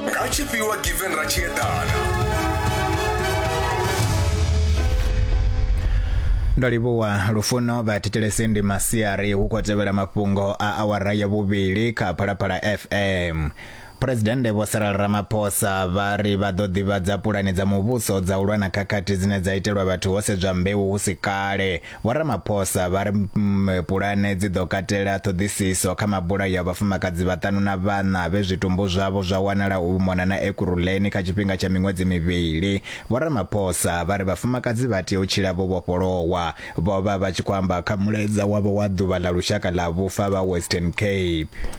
nga tshifhiwa given ra tshi eḓana ndo livhuwa lufuno vha thetshelese ndi masiari hu khou tevhela mafhungo a awara ya vhuvhili kha phalaphala fm phuresidennde vho sarala ramaphosa vha ri vha ḓo ḓivhadza pulane dza muvhuso dza u lwa na khakhathi dzine dza itelwa vhathu ho sedzwa mbeu hu si kale Vho Ramaphosa vha ri mm, pulane dzi ḓo katela ṱhoḓisiso kha mabulayo a vhafumakadzi vhaṱanu na vhaṋa vhe zwitumbu zwavho zwa wanala u mona na Ekurhuleni kha tshifhinga tsha miṅwedzi mivhili. Vho Ramaphosa vha ri vhafumakadzi vha tea u tshila vho vhofholowa. Vho vha vha tshi khou amba kha mulaedza wavho wa ḓuvha ḽa lushaka ḽa vhufa vha Western Cape.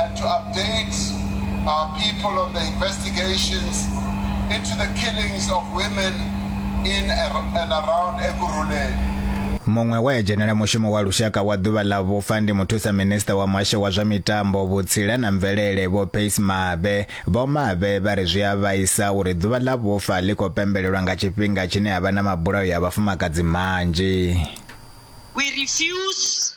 and to update our people on the investigations into the killings of women in and around Ekurhuleni. muṅwe we a dzhenela mushumo wa lushaka wa ḓuvha ḽa vhufa ndi muthusa minista wa muhasho wa zwa mitambo vhutsila na mvelele vho pace mabe vho mabe vha ri zwi a vhaisa uri ḓuvha ḽa vhufa ḽi khou pembelelwa nga tshifhinga tshine ha vha na mabulayo ya vhafumakadzi manzhi We refuse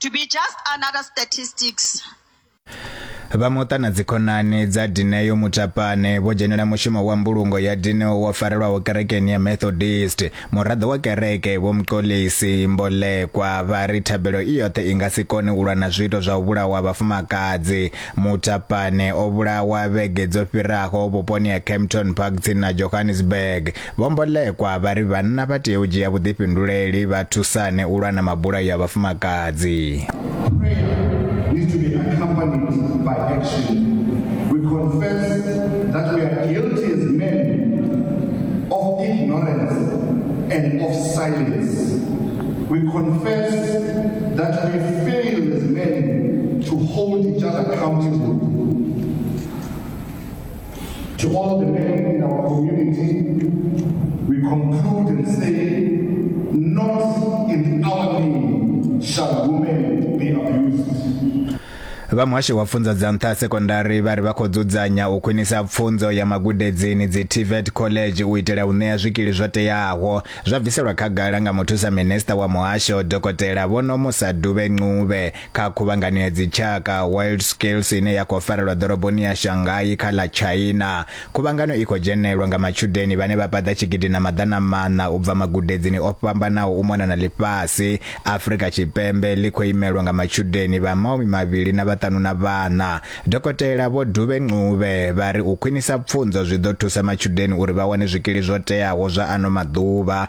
To be just another statistics. Vha muṱa na dzikhonani dza Dineo Mutapane vho dzhenela mushumo wa mbulungo ya Dineo wo farelwaho kerekeni ya Methodist. Muraḓo wa kereke Vho Mxolisi Mbolekwa vha ri thabelo i yoṱhe i nga si kone u lwa na zwiito zwa u vhulawa vhafumakadzi. Mutapane o vhulawa vhege dzo fhiraho vhuponi ha Kempton Park tsini na Johannesburg. Vho Mbolekwa vha ri vhanna vha tea u dzhia vhuḓifhinduleli vha thusane u lwa na mabulayo a vhafumakadzi. We confess that we fail as men to hold each other accountable. To all the men in our community, we conclude and say, not in our name shall women be abused. vha muhasho wa pfunzo dza nṱha sekondari vha ri vha khou dzudzanya u khwinisa pfunzo ya magudedzini dzi tvet college u itela u ṋea zwikili zwo teaho zwa bviselwa khagala nga muthusa minista wa muhasho dokotela vhonomusa duvhe ncube Kha khuvhangano ya dzitshaka World Skills ine ya khou farelwa ḓoroboni ya Shanghai kha ḽa China, khuvhangano i khou dzhenelwa nga matshudeni vhane vha paḓa tshigidi na maḓana maṋa u bva magudedzini o fhambanaho u mona na ḽifhasi. Afrika Tshipembe ḽi khou imelwa nga matshudeni vha maumi mavhili na vhaṱanu na vhaṋa. Dokotela Vho Dube Ncube vha ri u khwinisa pfunzo zwi ḓo thusa matshudeni uri vha wane zwikili zwo teaho zwa ano maḓuvha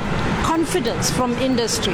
confidence from industry.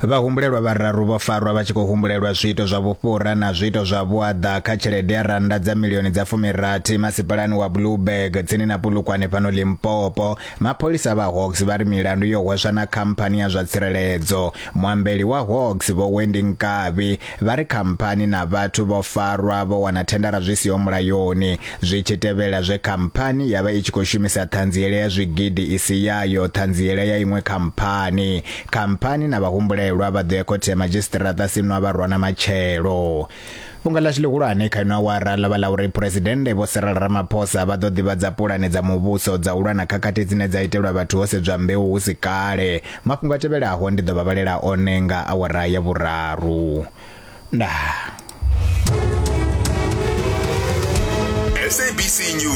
Vhahumbulelwa vhararu vho farwa vha tshi khou humbulelwa zwiito zwa vhufhura na zwiito zwa vhuaḓa kha tshelede ya rannda dza milioni dza fumirathi masipalani wa Blueberg tsini na Pulukwane fhano Limpopo. Mapholisa vha Hawks vha ri milandu yo hweswa na khamphani ya zwa tsireledzo. Muambeli wa Hawks Vho Wendy Nkabi Vha ri khamphani na vhathu vho farwa vho wana thendara zwi siho mulayoni zwi tshi tevhela zwe khamphani ya vha i tshi khou shumisa ṱhanziela ya zwigidi i si yayo ṱhanziela ya iṅwe khamphani. Khamphani na vhahumbulelwa vha ḓo ya khothe ya madzhisiṱiraṱa sinwa vha rwana matshelo. Fhungo ḽashu ḽihulwane kha ino awara ḽo vha ḽa uri Phresidennde Vho Cyril Ramaphosa vha ḓo ḓivhadza pulane dza muvhuso dza u lwa na khakhathi dzine dza itelwa vhathu ho sedzwa mbeu hu si kale. Mafhungo a tevhelaho ndi ḓo vha vhalela one nga awara ya vhuraru. Ndaa. SABC News.